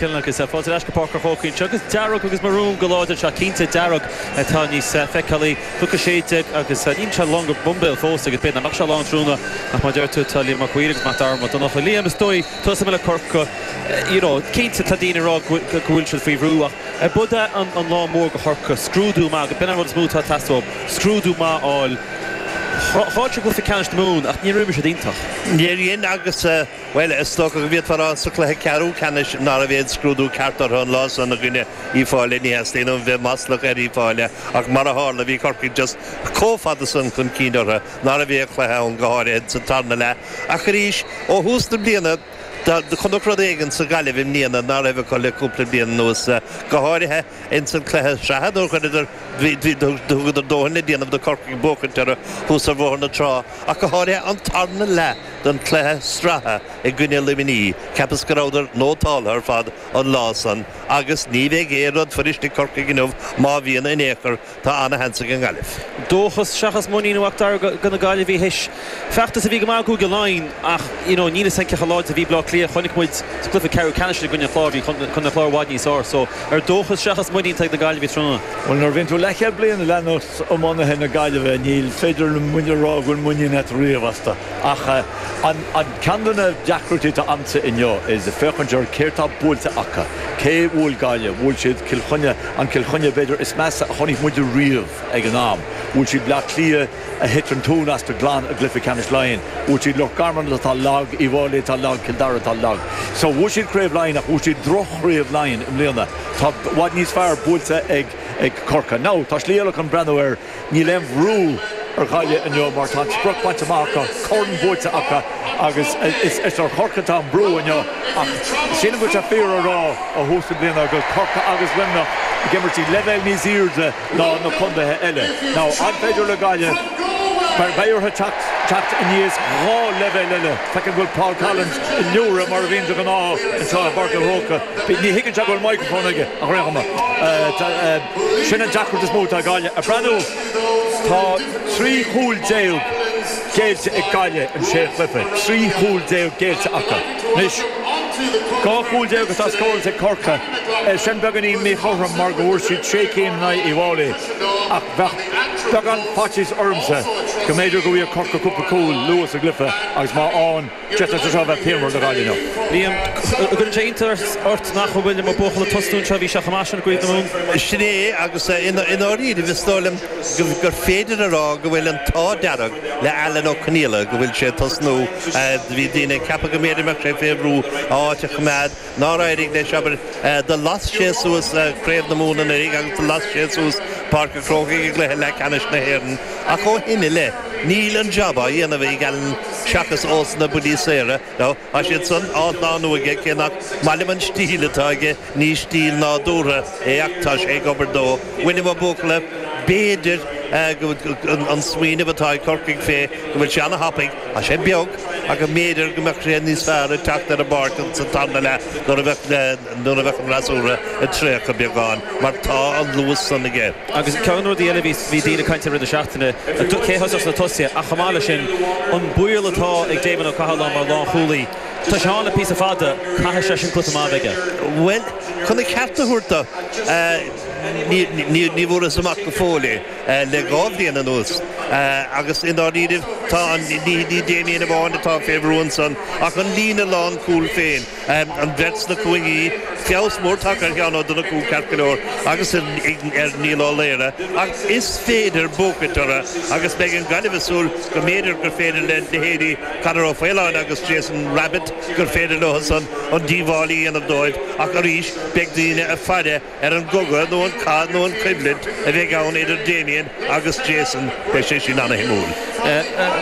Kilknock is fáilte ar ais go Páirc an Chrócaigh anseo agus dearg agus marún go láidir anseo, cinnte dearg atá níos feiceálaí, Cnoc 16 agus níl sé lán go boimbéal fós agus b'fhéidir nach mbeadh sé lán tráthnóna ach mar a deir tú tá Liam Mac a' Mhaoir agus Mac Dara Mac Donncha, Liam is dóigh tusa Mille Corcu you know cinnte tá daoine ag rá go bhfuil siad faoi bhrú ach ab iod é an lá mór go Corcaigh, scrúdú maith, b'in an rud is mó atá ag teastáil, scrúdú maith a fháil, tháinig cluiche ceannais na Mumhan ach ní raibh siad iontach. Níor dhein agus. Bhuel, is dócha go bhféadfá a rá sa chluiche ceathrú ceannais ná raibh aon scrúdú ceart orthu an lá san i gcoinne Uíbh Fhailí. Ní theastaíonn uaim bheith maslach ar Uíbh Fhailí ach mar a tharla bhí Corcaigh just comh fada san chun cinn orthu ná raibh aon chluiche ann, go háirithe insan tarna leath. Ach arís, ó thús na bliana do chonac rud éigin sa Ghaillimh i mbliana ná raibh acu le cúpla bliain anuas, go háirithe ins an chluiche sraithe nuair chuireadar, thugadar dóthain le déanamh do Corcaigh buachaint orthu thuas ar Bhóthar na Trá ach go háirithe an tarna leath. den chluiche sraithe i gcoinne Luimnigh, cheapas go rabhadar nótáltha ar fad an lá san agus ní bheidh aon rud fuirist ag Corcaigh inniu má bhíonn in aon chor, tá ana-sheans ag an nGaillimh. Dóchas seachas muinín a Mhac Dara go na Gaillimhigh théis feachtas a bhí go maith acu i gCúige Laighean ach you know níl muid cinnte cé chomh láidir a bhí Bleá Cliath, chonaic muid sa cluiche ceathrú ceannais sin i gcoinne an Chláir, bhí Contae an Chláir i bhfad níos fearr so ar dóchas seachas muinín atá ag na Gaillimhigh tráthnóna? Bhuel nuair a bhíonn tú leathchéad bliain ag leanacht. iománaithe na Gaillimhe, níl féidir liom a rá go bhfuil muinín agat riamh astu ach an ceann de na deacrachtaí atá agamsa inniu is féachaint ar céard tá buailte acu, cé bhuail Gaillimh, bhuail siad Cill Chainnigh, an Cill Chainnigh b'fhéidir is measa a chonaic muid riamh ag an am, bhuail siad Bleá Cliath a thit an tóin astu glan i gcluiche ceannais Laighean, bhuail siad Loch Garman atá lag, Uíbh Fhailí atá lag, Cill Dara atá lag. So bhuaigh siad Craobh Laighean ach bhuaigh siad droch-Chraobh Laighean i mbliana, tá i bhfad níos fearr buailte ag. ag Corcaigh. Now, tá slí eile chun breathnú air, níl aon bhrú ar Ghaillimh inniu mar tá an sprioc bainte amach acu, corn buaite acu agus is ar Chorcaigh atá an brú inniu ach sílim go bhfuil sé fíor a rá ó thús na bliana go bhfuil Corcaigh agus Luimneach ag imirt ag leibhéal níos airde ná na contaetha eile. Now, an féidir le Gaillimh, beidh orthu teacht aníos dhá leibhéal eile. Feicim go bhfuil Paul Collins ag liúireach mar a bhíonn de ghnáth anseo i bPáirc an Chrócaigh. Ní thuigeann sé go bhfuil microphone aige, a Ghrianghama. Sin an deacracht is mó atá ag Gaillimh. Ag breathnú, tá trí chúl déag géillte ag Gaillimh in sé chluiche. Trí chúl déag géillte acu. Anois, dhá chúl déag atá scóráilte ag Corcaigh. Sin beagáinín míchothrom mar go bhfuair siad sé cinn in aghaidh Uíbh Fhailí. Ach bheadh beagán faitíos ormsa go mb'fhéidir go bhfaighidh Corcaigh cúpla cúl luath sa gcluiche agus má fhaigheann d'fhéadfadh sé seo a bheith pianmhar do Ghaillimh inniu. Liam, An gcuireann sé iontas ort nach bhfuil Liam Ó Buachalla ag tosnú anseo, bhí sé chomh maith sin i gCraobh na Mumhan? Sin é agus i ndáiríre is dóigh liom gur féidir a rá go bhfuil an t-ádh dearg le Alan Ó Conghaile go bhfuil sé ag tosnú. Bhí daoine ag ceapadh go mb'fhéidir go mbeadh sé fé bhrú a áit a choimeád, nár éirigh leis, abair, do las sé suas Craobh na Mumhan anuraigh agus do las sé suas Páirc an Chrócaigh i gCluiche Leath Ceannais na hÉireann ach ó shin i leith níl an job á dhéanamh ag Alan seachas ós na buillí saora nó tá siad san ardnánú aige cé nach maith liom an stíl atá aige ní stíl nádúrtha é ach tá sé ag obair dó William Ó Buachalla B'fhéidir an smaoineamh atá ag Corcaigh fé go bhfuil sé ana-thapaidh Tá sé beag ach go mb'fhéidir go mbeadh sé níos fearr ag teacht ar an bpáirc ins an tarna leath nuair a bheadh, nuair a bheadh an fhreasúra ag traochadh beagán mar tá an luas san aige. Agus ceann rudaí eile a bhí, bhí daoine ag caint i rith na seachtaine, cé a thosódh sna tosaithe ach chomh maith leis sin an baol atá ag Damien Ó Cathaláin mar lánchúlaí. Tá sé ann le píosa fada, caithfidh seisean cluiche maith a bheith aige. Bhuel, chun a cheart a thabhairt dó, ní, ní, ní bhfuarthas amach go fóill é. le dhá bhliain anuas agus i ndáiríribh tá an, ní Damien amháin atá fé bhrú ansan ach an líne lánchúil féin, an bheirt sna cúinní, feabhas mór tagtha ar Sheán Ó Donnchú ceart go leor agus ar Niall Ó Laoghaire ach is féidir buachaint orthu agus beidh an Ghaillimh ag súil go mb'fhéidir gur féidir le leithéidí Conor Ó Faoláin agus Jason Rabbitte, gur féidir leo san an díobháil a dhéanamh dóibh ach arís beidh daoine ag faire ar an gcogadh nó an cath nó an choimhlint a bheidh ann idir Damien agus Jason, beidh sé sin ana-shuimiúil.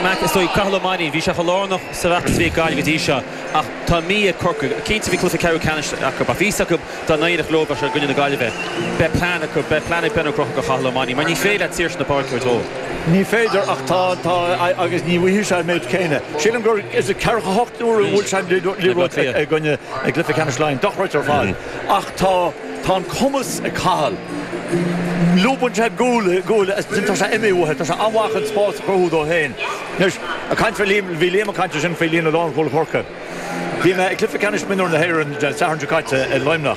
Mac, Is dóigh, Cathal Ó Mainnín, bhí sé chomh lárnach sa bhfeachtas a bhí ag Gaillimh go dtí seo ach tá mí ag Corcaigh. Cinnte, bhí cluiche ceathrú ceannais acu ach bhí fhios acu dá n-éireodh leo, bheadh sé i gcoinne na Gaillimhe. Beidh plean acu, beidh plean ag Ben Ó Conchúir do Cathal Ó Mainnín, mar ní féidir leat saoirse na páirce a thabhairt dó. Ní féidir ach tá, tá agus ní bhfaighidh sé an méid céanna. Sílim gur is ceathracha a hocht uaire a bhuail sé an liathróid i gcoinne, i gcluiche ceannais Laighean. Dochreidte ar fad. Ach tá an cumas ag Cathal. Lúbann sé gual i ngual agus ansin tá sé imithe uait. Tá sé an-mhaith chun spás a chruthú dó féin. Anois, ag caint fé Liam, bhí Liam ag caint ansin faoi líne lánchúil Chorcaí. Bhí mé ag Cluiche Ceannais Mionúir na hÉireann Dé Sathairn seo caite i Luimneach.